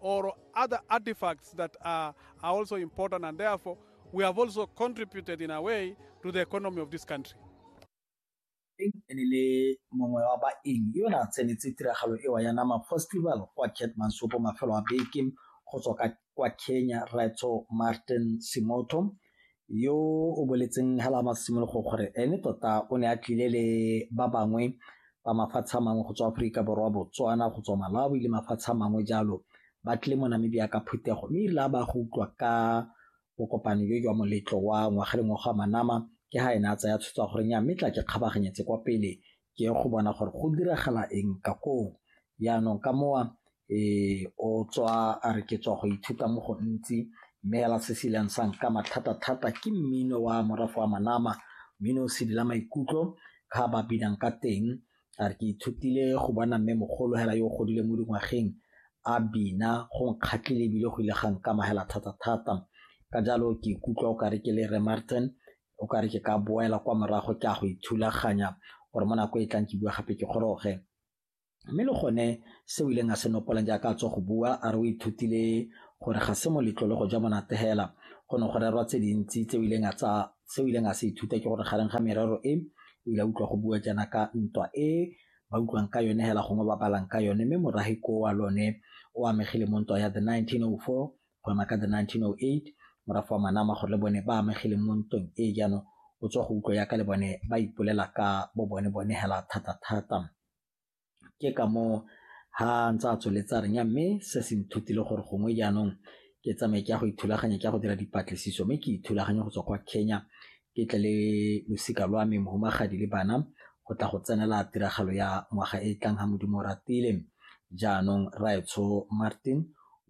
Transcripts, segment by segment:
or other artifacts that are, are also important and therefore we have also contributed in a way to the economy of this country. e ne le mongwe wa baeng yo ne a tsenetse tiragalo ewa ya nama festival kwa ketmansopo mafelo a beke go tswa kwa kenya raitso martin simoto yo o boletseng hela a masimologo gore ene tota o ne a tlile le ba bangwe ba mafatshe a mangwe go tswa aforika borwa botswana go tswa malawi le mafatshe a mangwe jalo ba tlile mo namibia ka phutego mme erile a ba go utlwa ka bokopane jo jwa moletlo wa ngwaga le ngwaga wa manama ke ha ene a tsaya tshwetso gore nya mme tla ke kgabaganyetse kwa pele ke go bona gore go diragala eng ka koo jaanong ka mowa o tswa a re ke tswa go ithuta mo go ntsi mme ela se se ileng sa nkama thata-thata ke mmino wa morafe wa manama mmino o sedila maikutlo ga ba binang ka teng a re ke ithutile go bona mme mogolo hela yo o godile mo dingwageng a bina go nkgatlhile ebile go ile ga nkama hela thata-thata ka jalo ke ikutlwa o kare ke le re Martin o kare ke ka boela kwa morago ke a go ithulaganya gore mo nako e tlang ke bua gape ke goroge Mme le gone se o ileng a se nopolang jaaka a tswa go bua a re o ithutile gore ga se moletlo le go ja monate hela go ne go rerwa tse dintsi tse o ileng a tsa se o ileng a se ithuta ke gore gareng ga merero e o ile a utlwa go bua jaana ka ntwa e ba utlwang ka yone hela gongwe ba balang ka yone mme moragi ko wa lone o amegile mo ntwa ya the 1904 go ema ka the 1908 morafa wa manama gore le bone ba amegile mo ntweng e jaanong o tswa go utlwa yaka le bone ba ipolela ka bo bone bone hela thata thata ke ka moo ha ntse a tsweletse a renya mme se se nthutile gore gongwe jaanong ke tsamaye ke ya go ithulaganya ke ya go dira dipatlisiso mme ke ithulaganya go tswa kwa Kenya ke tle le losika lwa me mohumagadi le bana go tla go tsenela tiragalo ya ngwaga e e tlang ga modimo ratile jaanong raetsho martin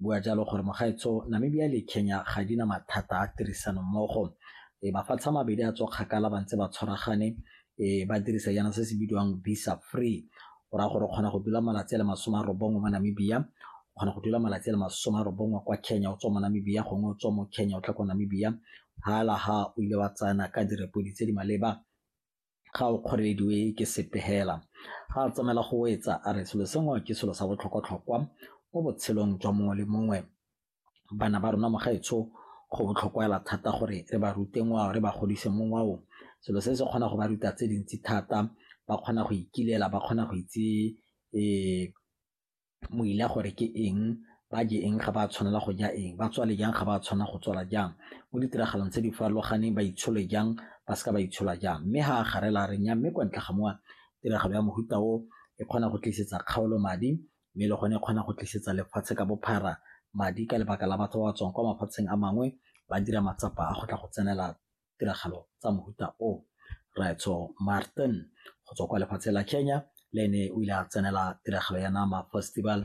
bua jalo gore mogaetsho namibia le kenya ga di na mathata a tirisano mmogo e mafatshe a mabedi a tswa kgakala ba ntse ba tshwaragane e ba dirisa jaana se se bidiwang visa free go raya gore o kgona go dula malatsi a le masome a robongwe mo namibia o kgona go dula malatsi a le masome a robongwe kwa kenya o tswa mo namibia gongwe o tswa mo kenya o tla kwa namibia hala ha o ile wa tsayana ka direpodi tse di maleba ga o kgorelediwe ke sepe hela ga a tsamaela go etsa a re selo sengwe ke selo sa botlhokwatlhokwa mo botshelong jwa mongwe le mongwe bana ba rona mogaetsho go botlhokwa hela thata gore re ba rute ngwao re ba godise mo ngwaong selo se se kgona go ba ruta tse dintsi thata ba kgona go ikilela ba kgona go itse um moila gore ke eng ba je eng ga ba tshwanela go ja eng ba tswale jang ga ba tshwana go tswala jang mo ditiragalong tse di farologaneng ba itshole jang ba seka ba itshola jang mme ha a garela re nya mme kwa ntle ga mowa tiragalo ya mohuta o e kgona go tlisetsa kgaolo madi mme le gone e kgona go tlisetsa lefatshe ka bophara madi ka lebaka la batho ba ba tswang kwa mafatsheng a mangwe ba dira matsapa a go tla go tsenela tiragalo tsa mohuta o Raetsho Martin go tswa kwa lefatshe la Kenya le ene o ile a tsenela tiragalo ya Nama Festival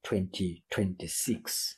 2026.